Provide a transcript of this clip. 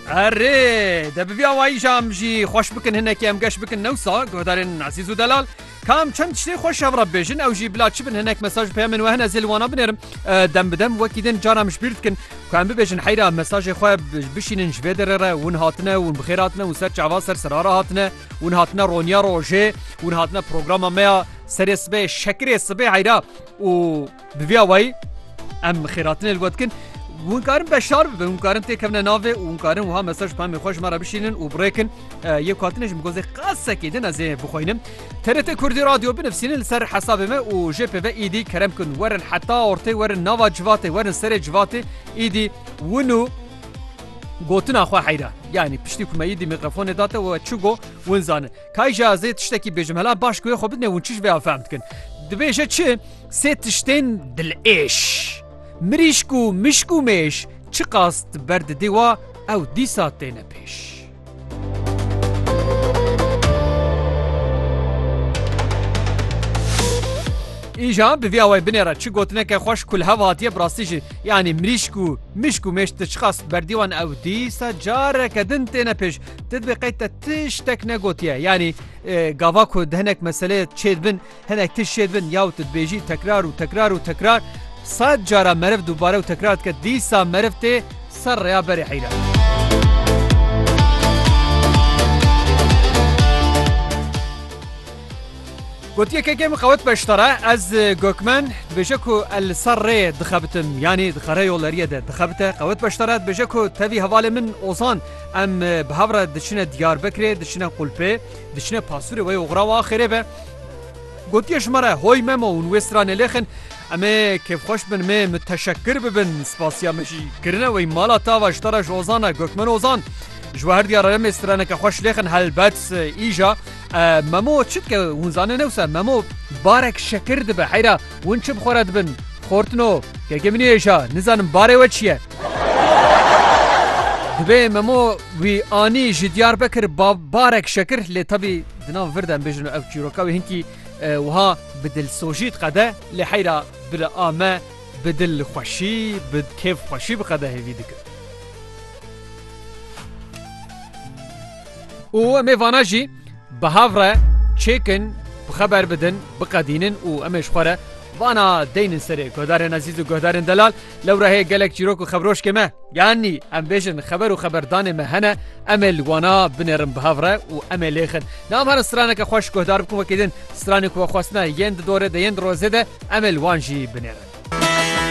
Erê de bi vî awayî jî em jî xweş bikin hinekî em geş bikin newsa guhdarên ezîz û delal. Kam çend tiştê xweş hev re bêjin ew jî bila çi bin hinek mesaj peyamên we hene zêl wana binerim dem bi dem wekî din cara em ji bîr dikin ku em bibêjin heyra mesajê xwe bişînin ji vê derê re hûn hatine hûn bixêr hatine û ser çava ser sirara hatine hûn hatine roniya rojê hûn hatine programa me ya serê sibê şekirê sibê heyra û Bi vî awayî em xêratinê li we dikin. Hûn karin beşdar bibin, hûn karin têkevine navê û hûn karin wiha mesaj pemê xwe ji me re bişînin û birêkin yê ku hatine ji min gozê qesekê din ez ê bixwînim. TRT Kurdî Radyo binivîsînin li ser hesabê me û jê pê ve îdî kerem kin werin heta ortê werin nava civatê werin serê civatê îdî win û gotina xwe heyra yanî piştî ku me îdî mîkrofonê date we çi go win zanin. Kayja ez ê tiştekî bêjim hela baş ku wê xwe bidinê hûn çi ji vê ya fehm dikin. Dibêje çi Sê tiştên dilêş. Mirîşk û mişk û mêş çiqas di ber didê wa ew dîsa têne pêş. Îja bi vî awayê binêre çi gotineke xweş ku li hev hatiye bi rastî jî yanî mirîşk û mişk û mêş ti çiqas berdî wan ew dîsa careke din têne pêş ti dibê qey te tiştek negotiye yanî gava ku di hinek meseleyê çêdibin Hinek tişt jê dibin yaw tu dibêjî tekrar û tekrar û tekrar sed cara meriv dubare û tekrar dike dîsa meriv tê ser rêya berê heyran. Gotiye kekê min qewet beştara ez gokmen dibêje ku el li ser rê dixebitim yanî dixere yoleriye de dixebite qewet beştara dibêje ku tevî hevalê min ozan em bi hev re diçine diyarbekirê diçine qulpê diçine pasûrê wê oxra wa xêrê be. Gotiye ji me re hoy memo hûn wê stranê lêxin Em ê kêfxweş bin mê miteşekkir bibin spasiya me jî kirine wey mala tava ji te re ji Ozan e Gökmen Ozan Ji we her diyar re mê straneke xweş lêxin helbet îja memo çi dike hûn zanê ne wisa memo barek şekir dibe heyra hûn çi bi xwe re dibin xortino kekê min êja nizanim barê we çi ye Divê memo wî anî ji Diyarbekir barek şekir lê tevî Di nav vir de em bêjin ev çîroka wê hinkî wiha bi dilsojî diqede lê heyra bila a me bi dil xweşî bi kêf xweşî bi qedehê vî dikir. û em ê vana jî bi hev re çêkin bi xeber bidin biqedînin û em ê ji xwe re vana deynin serê guhdarên ezîz û guhdarên delal Lewra heye gelek çîrok û xebrojkê me. Yanî em bêjin xeber û xeberdanê me hene, em ê li wana binêrin bi hev re û em ê lêxin. Ne em herin straneke xwe ji guhdar bikin wekî din stranê ku we xwestine yên di dorê de yên di rozê de em ê li wan jî binêrin.